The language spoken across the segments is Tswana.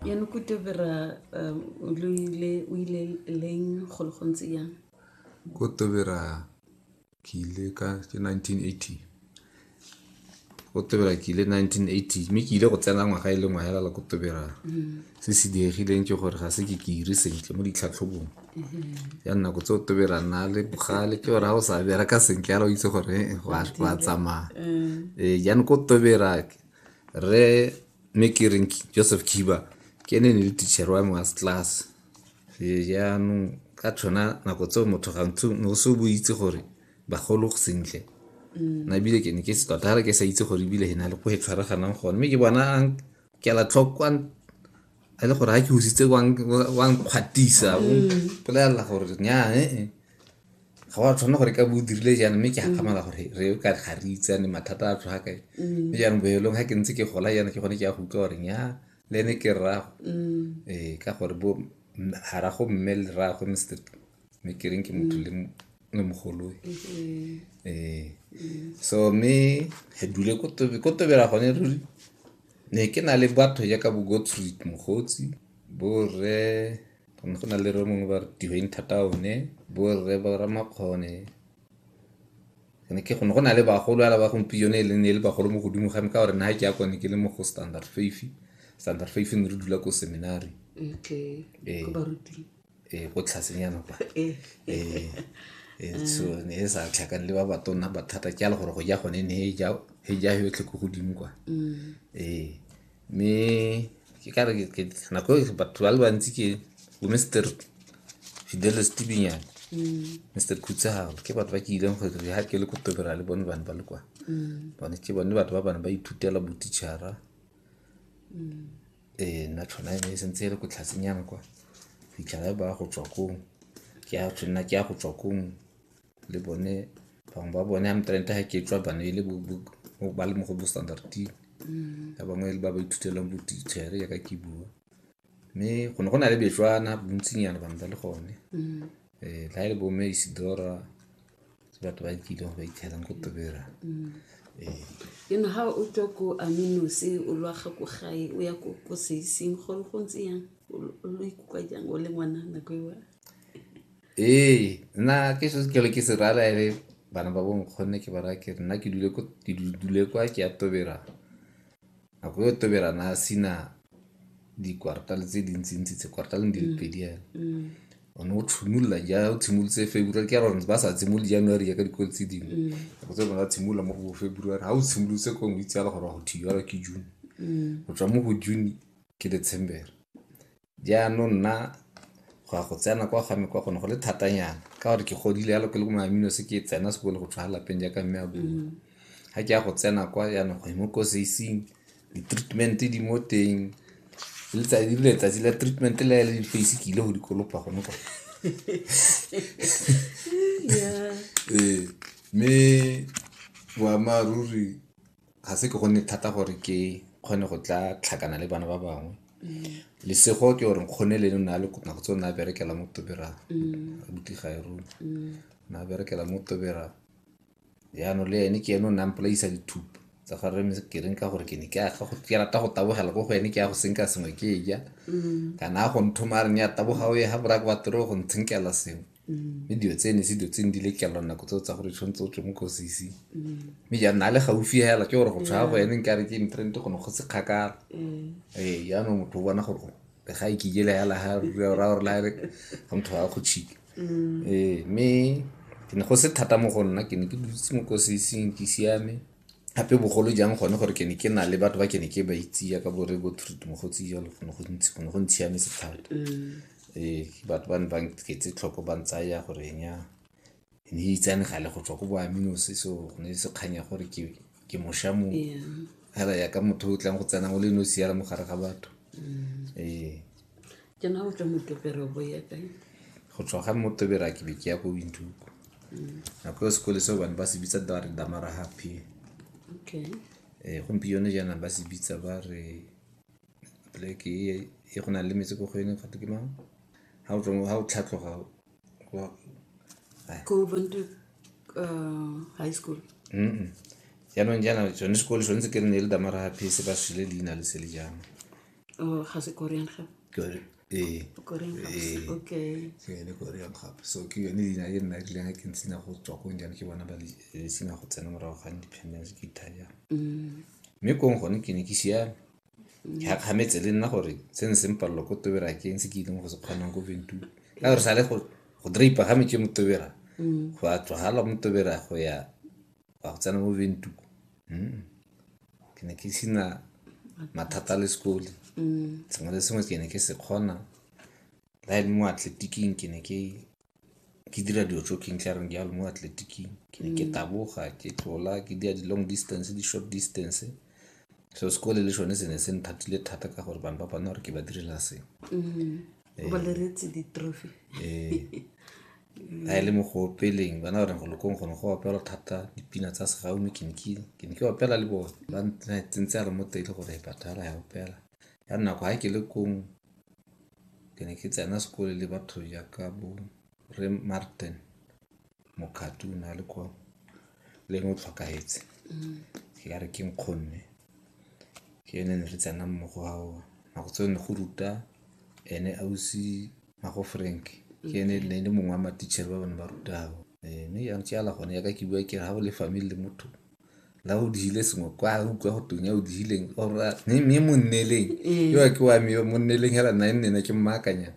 Jaanong ko Tobera um, lo ile o ile leng go le gontse yang? Ko Tobera ke ile ka ke 1980. Ko Tobera ke ile 1980 mme ke ile go tsena ngwaga e le ngwaga fela ko Tobera. Mm-hmm. Se se diegileng ke gore ga se ke ke ire sentle mo ditlhatlhobong. Mm-hmm. Ya nako tse o Tobera nna le bogale ke gore ga o sa bereka sentle fela o itse gore eh, wa tsamaya. Mm-hmm. Ee, jaanong ko Tobera re mme ke reng joseph kiba ke ene ne le teacher wa me wa class jaanong ka tshwana nako tseo motho gantsi ne o se o bo itse gore bagolo sentle mm. na ebile ke ne ke se tota ga re ke sa itse gore ebile e na le ko e tshwaraganang gone mme ke bona ke ala tlhokwa a le gore ga ke usitse wa nkgwatisa o mm. mpolelela gore nya ee eh, eh. ga wa tshwanela gore ka bo o dirile jaana mme ke mm. gakgamala gore re ka ga re itsane mathata a tswa kae mm. mme jaanong boelong ga ke ntse ke gola jaana ke gone ke ya go utlwa gore nya le ene ke rrago mm. ee ka gore bo garago mme le rrago mr mme ke reng ke motho le mogoloi mm-hmm. ee so mme re dule ko tobela gone ruri ne ke na le batho jaaka bo gottfried mogotsi bo rre go ne go na le re mongwe ba re di-winter town-e bo rre ba ramakgone ne ke gone go na le bagolo ala ba gompieno e leng e le bagolo mo godimo ga me ka gore nna ke ya kone ke le mo go standard fafe standard fafe ne re dula ko seminary ee ko tlhasenyana kwa so ne e sa tlhakane le ba batona bathata ke a le gore go ja gone ne e ja yotlhe ko godimo kwa ee me ke ka re nako e batho ba le bantsi ke bo mr fidelis tibinyane mr mm. khutsagalo ke batho ba ke ileng gore ga ke le ko tobera le bone bane ba le kwa mm. bone ke bone batho ba bane ba ithutela botichara mm. ee nna tshwana e ne e sentse e le ko tlhasenyang kwa fitlhela e ba go tswa kong ke a tshwanna ke ya go tswa kong le bone bangwe ba bone a mtrente ga ke tswa bane e le ba le mo go bo standarding mm. ba bangwe ba ba ithutelang botitšhere yaka ke bua mme go ne go na le betswana bontsinyana bangwe ba le gone um ga e le bomme isidora batho ba kile go ba ithelang ko tobera mm. eh. ke no ga o tswa ko aminose o lwaga ko gae o ya ko seiseng gore go ntse yang o lo ikutlwa jang o le ngwana nako ewa Ee, nna ke se ke le ke se rara ere bana ba bonkgonne ke ba raya ke re nna ke dule ko ke du- dule kwa ke ya tobera nako yo tobera na sina dikwartale tse dintsintsi tse kwartaleng di le pedi yana o ne o tshimolola ja o tshimolotse february ke gore ba sa tshimole january ya ka dikolo tse dingwe nako tse bona tshimolola mo go february ga o tshimolotse ko ngwe itse ala gore go thiyara ke june go tswa mo go june ke december Jaanong nna go ya go tsena kwa ga me kwa gone go le thatanyana ka gore ke godile yalo ke le ko mamino se ke tsena sekolo go tshwara lapeng jaaka mme a bua mm. ga ke ya go tsena kwa jaanong go e mo koseising di-treatment di mo teng letsatsi le letsatsi la treatment le le face ke ile go dikolopa gone kwa ee mme boammaaruri ga se ke gonne thata gore ke kgone go tla tlhakana le bana ba bangwe mm. lesego ke gore nkgone le nna le nako tse o ne a berekela mo tobera mm. abuti ga e rona mm. ne a berekela mo tobera jaanong le ene ke ene o ne a mpolaisa dithupo tsa ga reme ke reng ka gore ke ne ke rata go tabogela ko go ene ke ya go senka sengwe ke e ja kana a go nthomare ne ya taboga o ye ga borake wa toro go ntshenkela sengwe mme dilo tse ne se dilo tse ne di le kelelwa nako tseo tsa gore tshwanetse o tswe mo kosisi mme jaanong a le gaufi hela ke gore go tshwa go ene nkare ke intrent go ne go se kgakala ee jaanong motho o bona gore o le ga e kikele hela ha ra gore la re ga motho ga go tshika ee mme ke ne go se thata mo go nna ke ne ke dutse mo kosising ke siame gape bogolo jang gone gore ke ne ke na le batho ba ke ne ke ba itse yaka bore bo truth mogotsi jalo go ne go ntsi go ne go ntshiametse thata ee batho ba ne ba nketse tlhoko ba ntsaya gore enya e ne e itsane gale go tswa ko boaminose so go ne se kganya gore ke ke mosha mo fela yaka motho o tlang go tsena o le nosi yala mo gare ga batho ee ke na go tswa motopere bo ya kae go tswa ga motobera ke be ke ya ko bintuku mm. nako yo sekole seo bane ba se bitsa ba re damara happy okay eh gompieno jaana ba se bitsa ba re pleke e, e go na le metse ko go ene gato ke mang ha o tswa ha o tlhatloga ko bantu uh, high school mm jaanong jaana tsone sekole sone se ke re ne le damara happy se ba swile leina le se le jaana Oh, ga se Korean gape. Kore- ee Korean gape. Ee. Okay. ke yone korean gape so ke yone leina e nna rileng a ke ntsina go tswa ko jane ke bona ba le- le sena go tsena morago ga independence ke itaya Mm. mme kong gone ke ne ke siame ke gakgametse le nna gore se ne se mpalelo ko tobera ke eng se ke ileng go se kgonang ko ventura ka gore sale go go draper ga metse mo tobera go a tswagala mo tobera go ya wa go tsena mo ventuku hmm. ke ne ke sena mathata le sekole mm. sengwe le sengwe ke ne ke se kgona la e le mo atletiking ke ne ke ke dira dilo tso keng tlareng jalo mo atletiking ke ne ke mm. taboga ke tlola ke dira di-long distance di-short distance so sekole le sone se ne se nthatile thata ka gore bane ba bana gore ke ba direla sengwe mm. a e le mo go opeleng bana ba reng go lokong gone go opelwa thata dipina tsa segaume ke ne ke ne ke opela le bone ba tsentse a re mo teng le gore patala ya opela ya nako ga ke le kong ke ne ke tsena sekole le batho jaaka bo re martin mokgati o ne a le kwa leng o tlhokahetse ke ka re ke nkgonne ke ene ne re tsena mmogo ao nako tseo ne go ruta ene ausi mago frank ke ene ne le mongwe wa matitšhere ba bone ba ruta ao Eh, mme ya ntsala gone yaka ke bua ke re ga o le family le motho la o digile sengwe kwa o utlwa go tong ya o digileng ora mme mme mo nneleng yo ke wa me yo mo nneleng hela nna e nnena ke mmaakanyana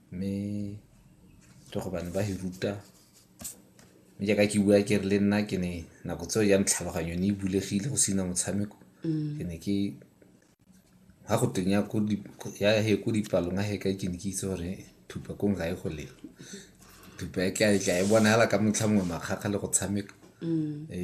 mme ke go bane ba e ruta mme jaaka ke bua ke re le nna ke ne nako tseo jang tlhaloganyo ne e bulegile go sena motshameko mm. ke ne ke ga go teng ya he ko dipalong a heka ke ne ke itse gore thupa kong ga e go lela thupa e tla e tla e bonagala ka motlha mongwe makgakga le go tshameka mm. eh,